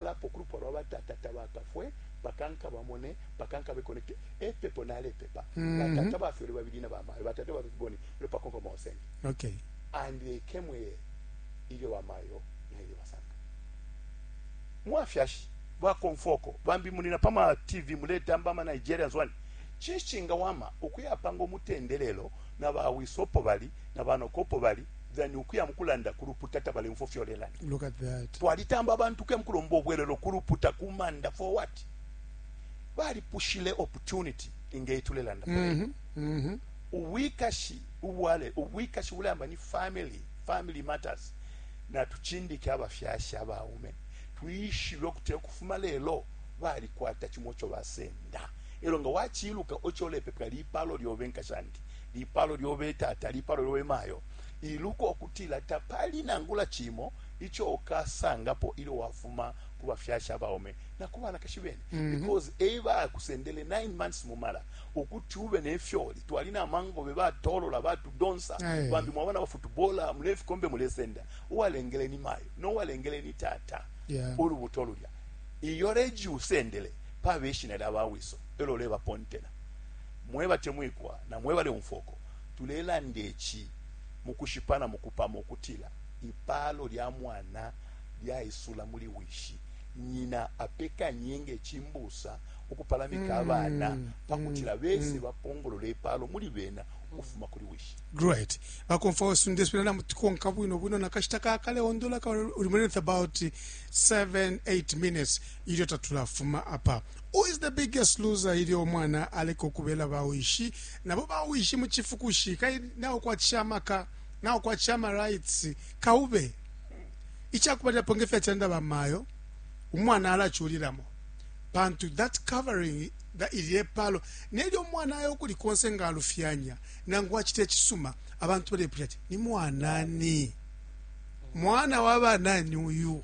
Nalapo kulupwa lwa batata tabakafwe mpaka nkabamone, mpaka nkabe connected. Epepo nalepepa. Mm -hmm. Batata bafyele babili na bamayo. Batata bafyele boni. Ilo pako kwa maosenge. Okay. And they came here. Ilyo bamayo na ilyo basanga. Mwafyashi. Wakonfoko. Bambi munina pama TV muleta mbama Nigerians wani. Chishinga wama. Ukuya pango mutendelelo. Na bawisopo bali. Na banokopo bali. than ukuya mukulanda ku luputa tabalemfo fyolelanda look at that twalitamba abantu kuya mukulomba obwelelo ku luputa ku manda for what balipushile opportunity ingeyi tulelanda mm -hmm. mm -hmm. ubwikashi ubwale ubwikashi bulamba ni family family matters natuchindike abafyashi abaume twishibe okuti okufuma lelo balikwata chimo cho basenda elo nga wachiluka ocho lepepela lipalo lyobe nkashandi lipalo lyobe tata, lipalo lyobe mayo. Iluko kutila tapali nangula cimo ico ukasangapo ilyo wafuma ku bafyashi abaume na ku banakashi bene mm -hmm. because e bakusendele 9 months mu mala ukuti ube ne fyoli twali na mangobe batolola batudonsa bambi mwaba na bafutubola mule fikombe mulesenda uwalengele ni mayo no walengele ni tata yeah. ulubuto lulya iyo reji usendele pabe ishina lya bawiso elo leba pontela Mwebatemwikwa na mwebaleumfwa uko tulelanda ici mukushipa na mukupama ukutila ipalo lya mwana lyaisula muli wishi. Nyina apekanye nge cimbusa ukupalamika abana pakutila bese bapongolole ipalo muli bena ukufuma kuli wishi. Great. Bakomfwa wesu ndesubila namutukonka bwino bwino na kashita ka kale ondola ka uli muli about 7 8 minutes ilyo tatulafuma apa. Who is the Biggest Loser Ilyo Umwana Aleka Ukubela Bawishi Nabo Bawishi Mu Cifukushi Kai Naukwatisha Amaka, Naukwatisha Ama Rights, Kaube. Icakubalilapo nge fyacilanda bamayo, umwana alaculilamo pantu that covering ilye palo nelyo umwana ayo kuli konse nga alufyanya nangu acita icisuma abantu balepusha ati ni mwanani mwana wa banani uyu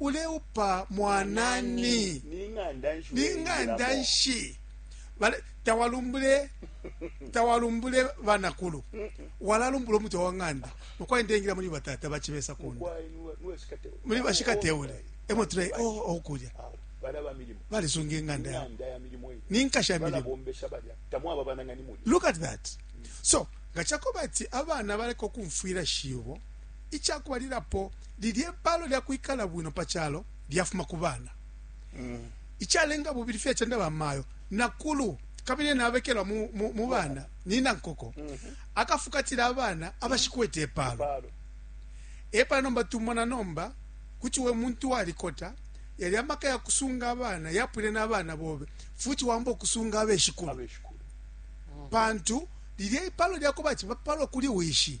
uleupa mwanani ning'anda nshi tawalumbule tawalumbule banakulu walalumbula umutwe wa ng'anda mukwai ndengila muli batata bachibesa kunda muli bashikateule emo tule oh, okulya oh, balisunga ing'anda yabo ninkasha milimo look at that so nga chakoba ati abana baleka okumfwira shibo Ica kubalilapo, lilye paalo lya kwikala bwino pa calo lyafuma ku bana. Icalenga bubili, fyacenda bamayo, nakulu, kabili ena abekelwa mu bana, nina nkoko. Akafukatila abana abashikwete ipaalo. Epala nomba tumona nomba, kuti we muntu walikota, yalya maka ya kusunga abana yapwile na bana bobe, futi waamba ukusunga abeshikulu, pantu lilye ipaalo lya kubati bapalwa kuli wishi.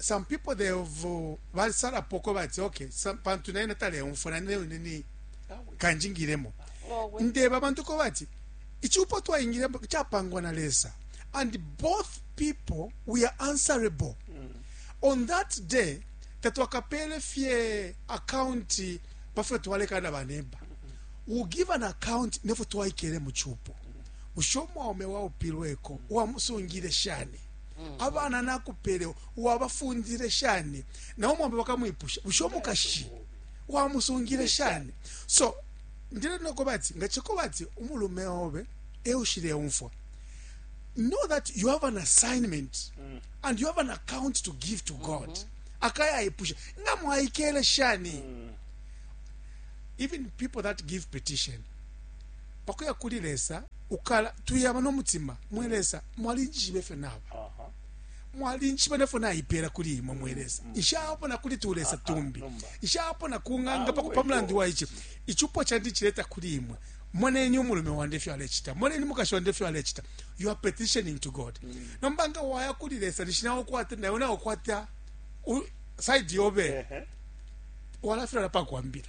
some people they have basalapo ko bati okay pantu naye nataleumfwa nane wine ni kanjingiremo ndeba abantu ko bati ichupo twaingiremo chapangwa na lesa and both people we are answerable mm. on that day tatwakapele fye akaunti pafyo twalekana banemba u give an account nefo twaikele mu chupo usho mwaume waupilweko wamusungire shani mm. abana nakupele wabafundile shani na umwambe bakamwipusha busho mukashi wamusungile shani so ndile noko bati nga chiko bati umulume obe eushile umfwa know that you have an assignment mm. and you have an account to give to God mm -hmm. akaya ipusha nga mwaikele shani mm. even people that give petition pakuya kuli lesa ukala tuyaba no mutima mwe lesa mwalinjishiba ifyo naba mwalinjishiba nefyo naipela kuli imwe mwe lesa mm. nshapona kuli tulesa tumbi nshapona ku ng'anga ah, pa mulandu wa ici icupo candi cileta kuli imwe moneni umulume wandi efyo alecita moneni mukashi wandi efyo alecita you are petitioning to god mm. nomba nga waya kuli lesa nishi nawe ukwata nawe nawe ukwata side yobe walafilala pakwambila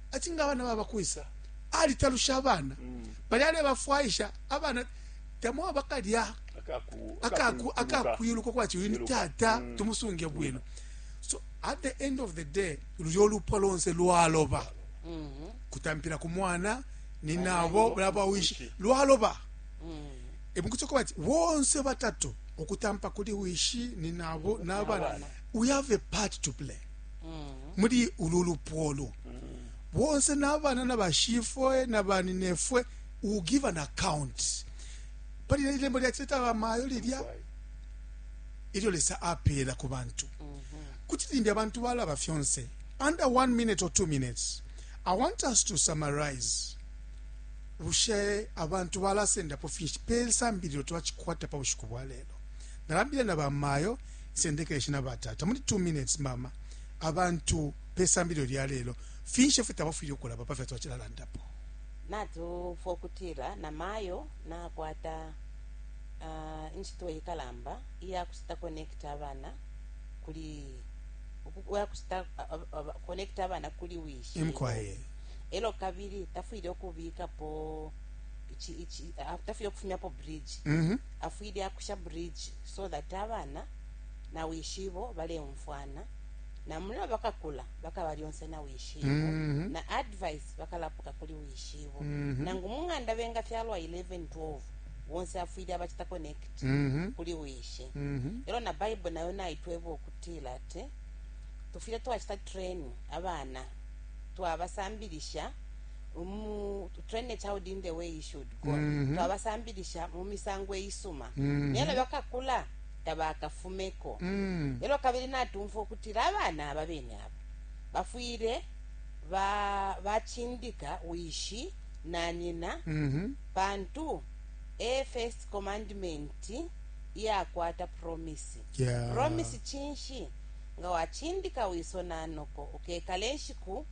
ati nga abana baba kwisa alitalusha abana mm. bali alebafwaisha abana tamwa bakalya akakwiluka kwati uyu ni tata mm. tumusunge bwino so at the end of the day luyo lupwa lonse lwaloba mm-hmm. kutampira ku mwana ni nabo babawishi lwaloba mm. emukuti okuba ti bonse batatu okutampa kuli wishi ni nabo n'abana we have a part to play muli ulu lupwa olu bonse n'abana na bashifwe na baninefwe will give an account pali lelo ilembo lyacileta bamayo lilya ilyo lesa apeela ku bantu kuti limbi abantu balaba fyonse under one minute or two minutes i want us to summarize bushe abantu balasendapo finshi pe sambililo twacikwata pa bushiku bwa lelo Nalandile na bamayo, Isendekeshi na batata, muli 2 minutes, mama, abantu pe sambililo lya lelo, finshi ifyo tabafwile ukulaba pa fyo twacilalandapo? Natumfwa ukutila na mayo nakwata, uh, incito ikalamba iya kucita connect abana kuli, ukuya kucita connect abana kuli wishi. Imkwaye. Elo kabili tafwile ukubikapo, ichi, ichi, tafwile kufumyapo bridge. Mm -hmm. afwile akusha bridge so that abana na wishibo baleumfwana na mulo bakakula bakaba lyonse na wishibo mm -hmm. na advice bakalapuka kuli wishibo mm -hmm. nangu mung'anda benga fyalwa 11 12 bonse afwile abachita connect mm -hmm. kuli wishi mm -hmm. elo na bible nayo naitweba okutila ati tufwile twachita train abana twabasambilisha mhm. twabasambilisha mu misango eyisuma mhm. naye lelo bakakula tabakafumeko mhm. lelo kabili natumfwa ukutila abana aba bene abo bafwile bacindika wishi na nyina pantu e first commandment iyakwata promisi promisi cinshi Nga wacindika wiso na noko, ukekala inshiku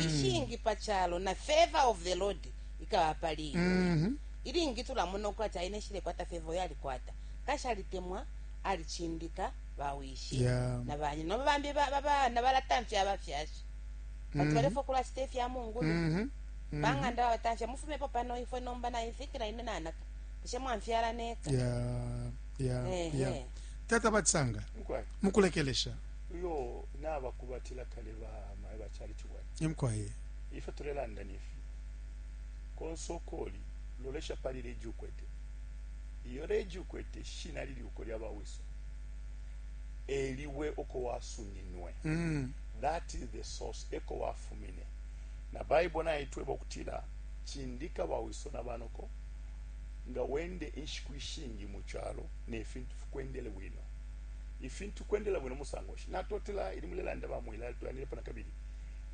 ishingi pa calo, na favor of the Lord ikaba pali iwe. Ilingi tulamona ukwati aina ishilekwata favor uyo alikwata, kanshi alitemwa, alicindika bawishi Yeah. na banyina. Nomba bambi ba- ba- bana balatamfya abafyashi pantu balefwa ukulacita ifya mungulu bang'anda babatamfya mufumepo pano ifwe nomba nainfikila ine nanaka bushe mwamfyala neka Yeah. ya Ehe. ya tata batisanga Mukwai. mukulekelesha uyo nabakubatila kale bamaye bacali ciwai emkwaye ife tulelanda nifi konse ukoli lolesha pali leji ukwete iyo leji ukwete shina lili uko lyabawiso eliwe uko wasuminwe Mm. that is the source eko wafumine na baibo naitweba okutila cindika bawiso na banoko nga wende inshiku ishingi mu calo ne fintu fikwendele bwino. Ifintu kwendela bwino musango nshi? Natotela ili mulelanda ba Mwilali tulandilepo na kabili.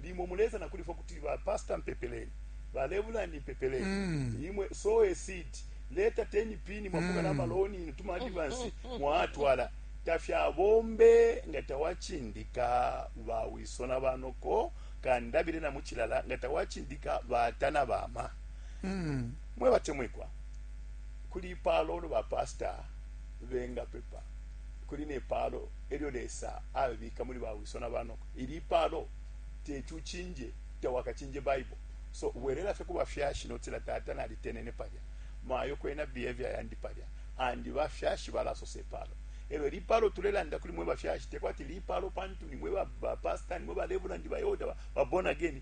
Limo muleza na kuli fwe kuti ba pastor mpepeleni, ba lebulandi mpepeleni. Mm. Imwe sow a seed, leta 10 pin mwafuka na maloni inu tuma advance mwatwala. Tafyabombe nga tawacindika ba wiso na banoko kandabile na mucilala nga tawacindika bata na bama. Mwe batemwikwa, kuli ipaalo ulo ba pastor benga pepa, kuli ne paalo elyo Lesa abika muli ba wiso na banoko. Ili ipaalo teti ucinje, tawakacinje Baibo. So bwelela fye ku bafyashi notila, Tata nalitenene palya, mayo kwena behavior yandi palya, and ba fyashi balasosa ipaalo. Elyo ili ipaalo tulelanda kuli mwe bafyashi, tekwati lipaalo pantu nimwe ba pastor, nimwe ba reverend, ba elder, ba born again.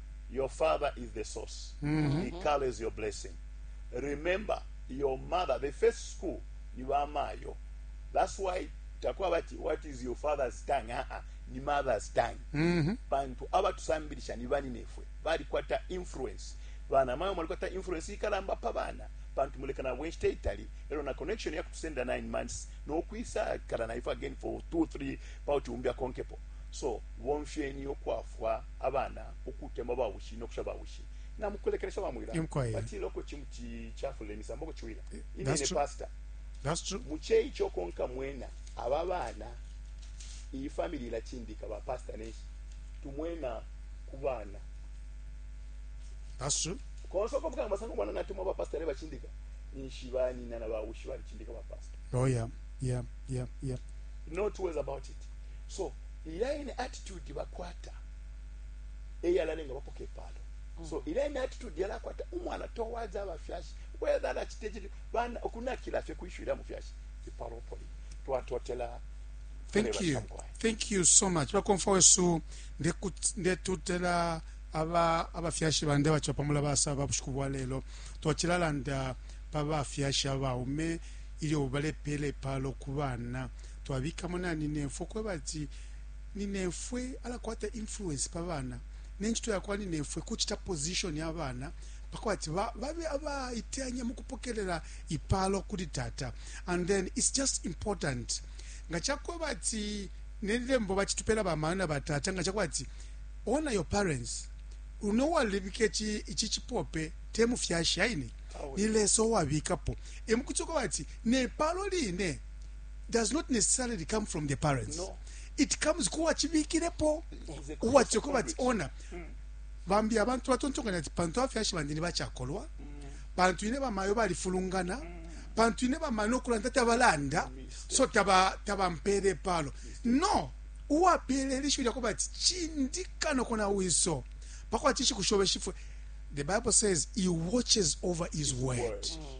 Your father is the source. Mm-hmm. He carries your blessing. Remember, your mother, the first school, ni mayo. That's why takwabati what is your father's tongue uh -uh, ni mother's tongue mm -hmm. pantu abatusambilisha ni bani nefwe balikwata influence bana mayo mwalikwata influence ikalamba pa bana pantu mulekana bwenshita itali elo na connection ya kutusenda 9 months nokwisa kala na ife again for 2 3 pauti umbi akonkepo so bomfyeni okwafwa abana ukutemwa bawishi no kusha bawishi na mukulekelesha bamwila batila uko cimuti cafula imisambo kuciwila eh, inene pasta muce ico konka mwena aba bana iyi famili ilacindika ba pasta neshi tumwena ku bana konse uko mukanga masanga umwana natemwa ba pasta ne bacindika ninshi banina na bawushi balicindika ba pasta oh yeah yeah yeah yeah not worries about it So ilya ine attitude bakwata eyalalenga bapoka ipaalo so mm. ilya ine attitude yalakwata umwana towards abafyashi whether alacita icili bana okunakila fye kwishwila mufyashi ipaalo opoli twatotela thank you thank you so much bakomfa wesu ndetutela aba abafyashi bandi abaca pamula basa ba bushiku bwa lelo twacilalanda pa bafyashi abaume ilyo balepela ipalo ku bana twabikamo na ninefwe ukweba ati ninefwe alakwata influence pa bana ne ncito ya kwa ninefwe kucita position ya bana pakuba ati ba- babe abaiteyanya mu kupokelela ipalo kuli tata and then it's just important nga cakweba ati nelembo bacitupela bamayo na batata nga cakweba ati honor your parents uno walibika ici ici cipope te mufyashi aine Awe. ni lesa owabikapo emukuti uko bati nepalo line does not necessarily come from the parents no. it comes kuwa chibikirepo uwa choko bati ona mm. bambi abantu batontonganya ati pantu afyashi bandi ni bachakolwa mm. pantu ine bamayo balifulungana mm. pantu ine bamayo nokulanda tabalanda so taba tabampere palo no uwa pele lishu lya kubati chindika no kona wiso pakwa tishi kushobe shifwe the bible says he watches over his word mm.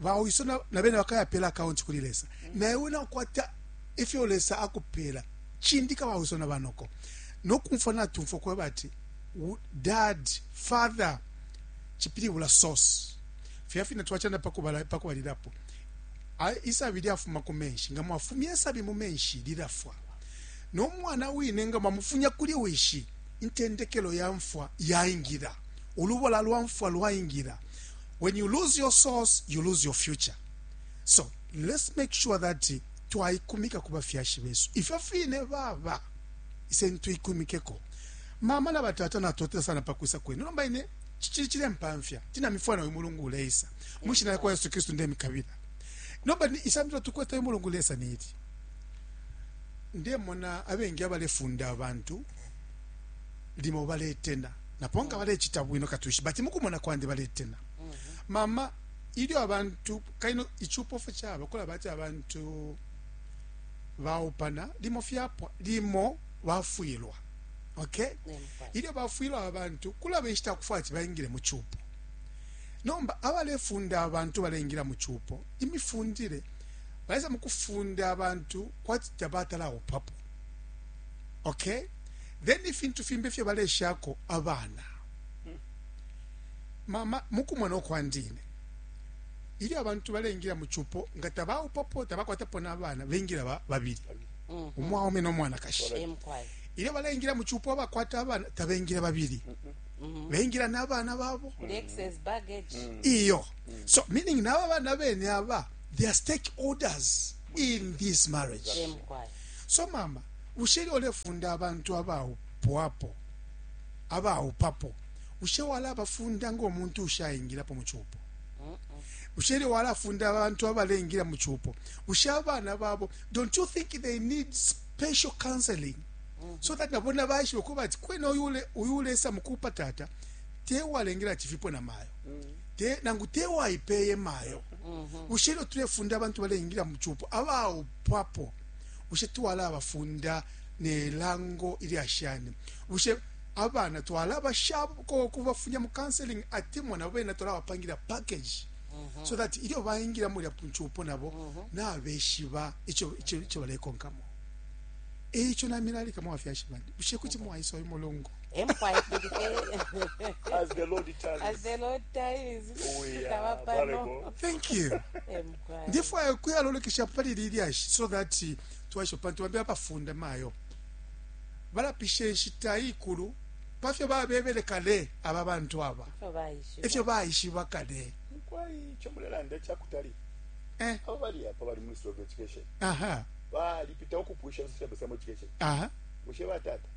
bawiso na bene bakayapela akaunti kuli lesa naye wena ukwata ifyo lesa akupela chindika bawiso na banoko nokumfwa natumfwa kweba ati dad father chipilibula source fya fina twachana pakubala pakubalilapo isabi lyafuma ku menshi nga mwafumya isabi mu menshi lilafwa n'omwana wine nga mwamufunya kuli wishi intendekelo ya mfwa yaingira ulubola lwa mfwa lwaingira When you lose your source, you lose your future. So, let's make sure that twaikumika ku bafyashi besu. Ifyo fine baba, ise ntuikumikeko. Mama na batata natotela sana pakwisa kwenu. Nomba ine, chichiri chile mpamfya. Tina mifwana uyu mulungu uleisa. Mushi na kwa Yesu Kristu nde mikabila. Nomba ni isambilo tukweta uyu mulungu uleisa ni iti. Ndemona abengi abalefunda abantu limo baletena napo nga balecita bwino katwishi bati mukumona kwandi baletena mhm. mama ilyo abantu kaino icupo fe caba kulaba ati abantu baupana limo fyapwa limo bafwilwa okay ilyo bafwilwa abantu kulaba inshita yakufwaya ati baingile mu cupo nomba abalefunda abantu balengila mu cupo imifundire baisa mukufunda abantu kwati tabatalaupapo okay then ifintu fimbi ifyo baleshako abana mama mukumona okwandine ilyo abantu balengila mu cupo nga tabaupapo tabakwatapo n'abana bengila ba- babili Mhm. umwaume n'omwanakashi Eh, mukwai. ilyo balengila mu cupo abakwata abana tabengila babili Mhm. bengila n'abana babo The excess baggage. iyo so meaning n'aba bana bene aba they are stakeholders in this marriage Eh, mukwai. So mama, bushe ilyo ulefunda abantu abaupwapo, abaupapo, bushe walabafunda ngo muntu ushaingilapo mu cupo? bushe ilyo walafunda abantu abaleingira mu cupo bushe abana babo don't you think they need special counseling so that nabo nabaishibe kuba ati kwena uyu ulesa mukupa tata tewalengera ati vipo na mayo te, nangu tewayipeye mayo bushe ilyo tulefunda abantu baleingira mu cupo pwapo bushe twalaba funda nelango ilya shani bushe abana twalaba shako kubafunya mu counseling atemwa nabo bena twalabapangira package mhm. so that ilyo bayingira mulya punchupo nabo mhm. nabeshiba icho icho icho balekonkamo eicho namilalika mwafyashi bandi bushe kuti mwaisa uyu mulungu empire as the lord times as the lord times oh, yeah. thank you Ndefwaya ukuya lolekeshapo pali ili lyashi so that twaishiba pantu bambi abafunda mayo balapisha inshita ikulu pafyo babebele kale aba bantu aba efyo baishiba kale mukwai ico mulelanda cakutali eh. aba bali apa bali mu Ministry of Education aha balipita ukupwisha social system education aha bushe batata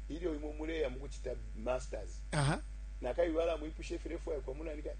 ilyo imwe muleya mukuchita masters aha nakabibala mwipushe firefu yakwa munani kani